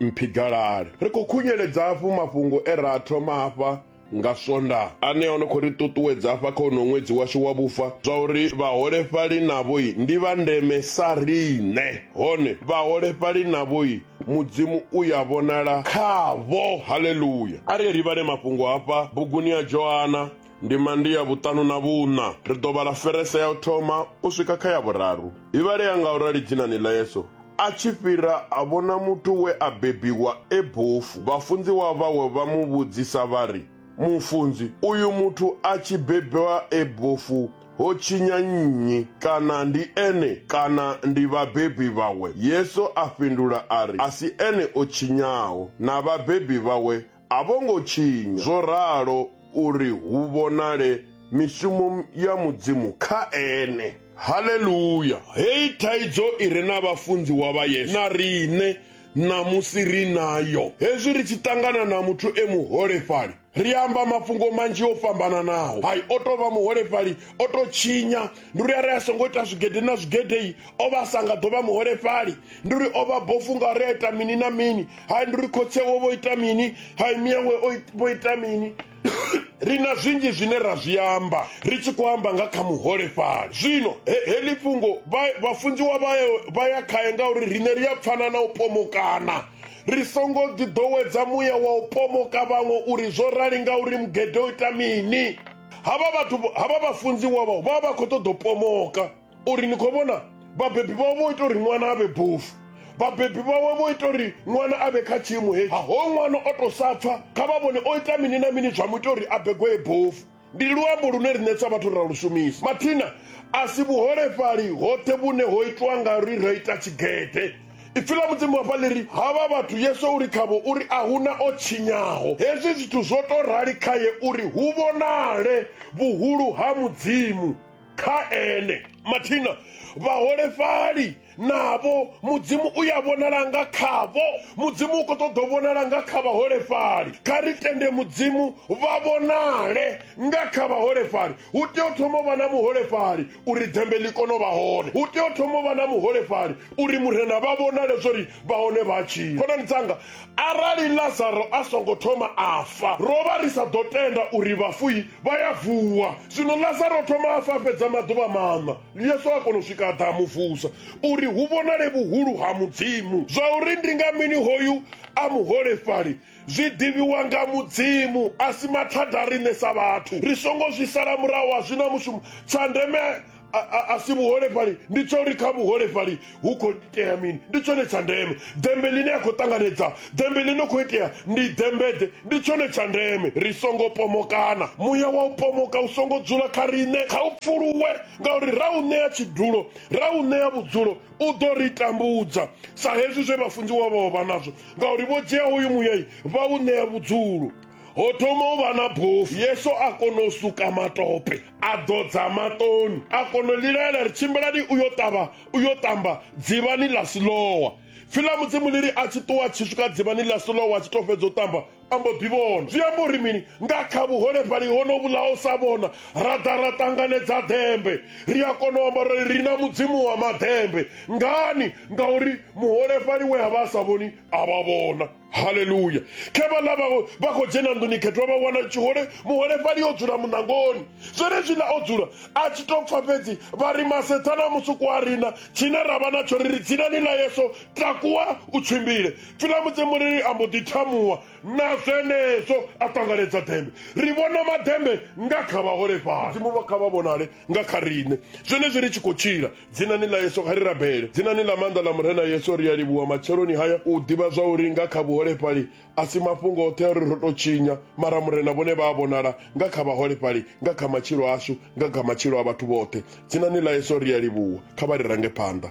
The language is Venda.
mphigalale. Ri khou khunyeledza hafhu mafhungo e ra a thoma hafha nga Swondaha ane o no khou ri ṱuṱuwedza hafha kha uno ṅwedzi washu wa vhufa zwa uri vhaholefhali navhoi ndi vha ndeme sa riṋe, hone vhaholefhali navhoi Mudzimu u ya vhonala khavho. Haleluya! A ri livhane mafhungo hafha buguni ya Johana Ndima ndi ya vhuṱanu na vhuṋa. Ri ḓo vhala ferese ya u thoma u swika kha ya vhuraru. I vhalea nga u rali dzinani ḽa Yesu. A tshi fhira, a vhona muthu we a bebiwa e bofu. Vhafunziwa vhawe vha mu vhudzisa vha ri, Mufunzi, uyu muthu a tshi bebwa e bofu ho tshinya nnyi? Kana ndi ene kana ndi vhabebi vhawe? Yesu a fhindula a ri, A si ene o tshinyaho, na vhabebi vhawe A vho ngo tshinya zwo ralo uri hu vhonale mishumo ya Mudzimu kha ene. Haleluya! Heyi thaidzo i re na vhafunziwa vha Yesu na riṋe ṋamusi ri nayo. Hezwi ri tshi ṱangana na muthu e muholefhali, ri amba mafhungo manzhi o fhambananaho. Hai, o tou vha muholefhali, o tou tshinya, ndi uri a re a songo ita zwigede na zwigede-i, o vha sa nga ḓo vha muholefhali ndi uri o vha bofu nga ri a ita mini na mini hai ndi uri khotsewo vho ita mini hai miyawe vho ita mini ri na zwinzhi zwine ra zwi amba ri tshi khou amba nga kha muholefhali zwino heḽi fhungo vhafunziwa vha ya khae ngauri riṋe ri a pfana na u pomokana ri songo ḓiḓowedza muya wa u pomoka vhaṅwe uri zwo rali ngauri mugede o ita mini havha vhathu havha vhafunziwa vha vha vha khou ṱoḓa u pomoka uri ni khou vhona vhabebi vhawe vho ita uri ṅwana a vhe bofu vhabebi vhawe vho ita uri ṅwana a vhe kha tshiimo hetshi ho ṅwana o to sa pfa kha vha vhone o ita mini na mini zwa mu ita uri a begwee bofu ndi luambo lune riṋe sa vhathu ra lu shumisa mathina a si vhuholefhali hoṱhe vhune ho itwa nga ri ra ita tshigede ipfi ḽa mudzimu hafha ḽi ri havha vhathu yesu uri khavho uri a huna o tshinyaho hezwi zwithu zwo to rali khaye uri hu vhonale vhuhulu ha mudzimu kha ene mathina vhaholefhali navho mudzimu u ya vhonala nga khavho mudzimu u khou ṱoḓa u vhonala nga kha vhaholefhali kha ri tende mudzimu vha vhonale nga kha vhaholefhali hu tea u thoma u vha na muholefhali uri dzembe ḽi kone u vha hone hu tea u thoma u vha na muholefhali uri murena vha vhonale zwori vha hone vha tshila khonani dzanga Arali Lazaro a songo thoma a fa, ro vha ri sa ḓo tenda uri vhafui vha ya vuwa. Zwino Lazaro o thoma a fa fhedza maḓuvha maṋa. Yesu a kona u swika a ḓa a mu vusa uri hu vhonale vhuhulu ha Mudzimu. Zwa uri ndi nga mini hoyu a muholefhali zwi ḓivhiwa nga Mudzimu, a si mathada a riṋe sa vhathu. Ri songo zwi sala murahu, a zwi na mushumo. Tsha ndeme a, a, a si vhuholefhali ndi tsha uri kha vhuholefhali hu khou itea mini ndi tshone tsha ndeme dembe ḽine a khou ṱanganedza dembe ḽine khou itea ndi dembeḓe ndi tshone tsha ndeme ri songo pomokana muya wa u pomoka u songo dzula kha riṋe kha u pfuluwe ngauri ra u ṋea tshidulo ra u ṋea vhudzulo u ḓo ri tambudza sa hezwi zwe vhafunziwa vhao vha nazwo ngauri vho dzhia hoyu muyai vha u ṋea vhudzulo ho thoma u vha na bofu yesu a kona u suka matope a ḓodza maṱoni a kona u lilaela ri tshimbilani u yo ṱavha u yo ṱamba dzivhani ḽa silowa pfi ḽa mudzimu ḽi ri a tshi ṱuwa tshi swika dzivhani ḽa silowa a tshi to fhedza u ṱamba a mbo ḓi vhona zwi amba uri mini nga kha vhuholefhali hono vhulaho sa vhona ra ḓa ra ṱanganedza ḓembe ri a kona u amba uri ri na mudzimu wa maḓembe ngani ngauri muholefhali we a vha a sa vhoni a vha vhona haleluya khe vhaḽa vha- vha khou dzhena nḓuni khethwa vha wana tshihole muholefhali o dzula muṋangoni zwenezwiḽa o dzula a tshi tou pfa fhedzi vha ri masethana musuku a rina tshine ra vha natsho ri ri dzinani ḽa yeso takuwa u tshimbile pfilamudze muriri a mbo ḓi thamuwa na zwenezwo a ṱanganedza dembe ri vhona madembe nga kha vhaholefhali mudzimu vha kha vha vhonale nga kha riṋe zwenezwi ri tshi khou tshila dzinani ḽa yesu kha ri rabele dzinani ḽa maanḓa ḽa murena yesu ri a livhuwa matsheloni haya u ḓivha zwa uri nga kha vhuholefhali a si mafhungo oṱhe a ri ro tou tshinya mara murena vhone vha a vhonala nga kha vhaholefhali nga kha matshilo ashu nga kha matshilo a vhathu vhoṱhe dzinani ḽa yesu ri a livhuwa kha vha ri range phanḓa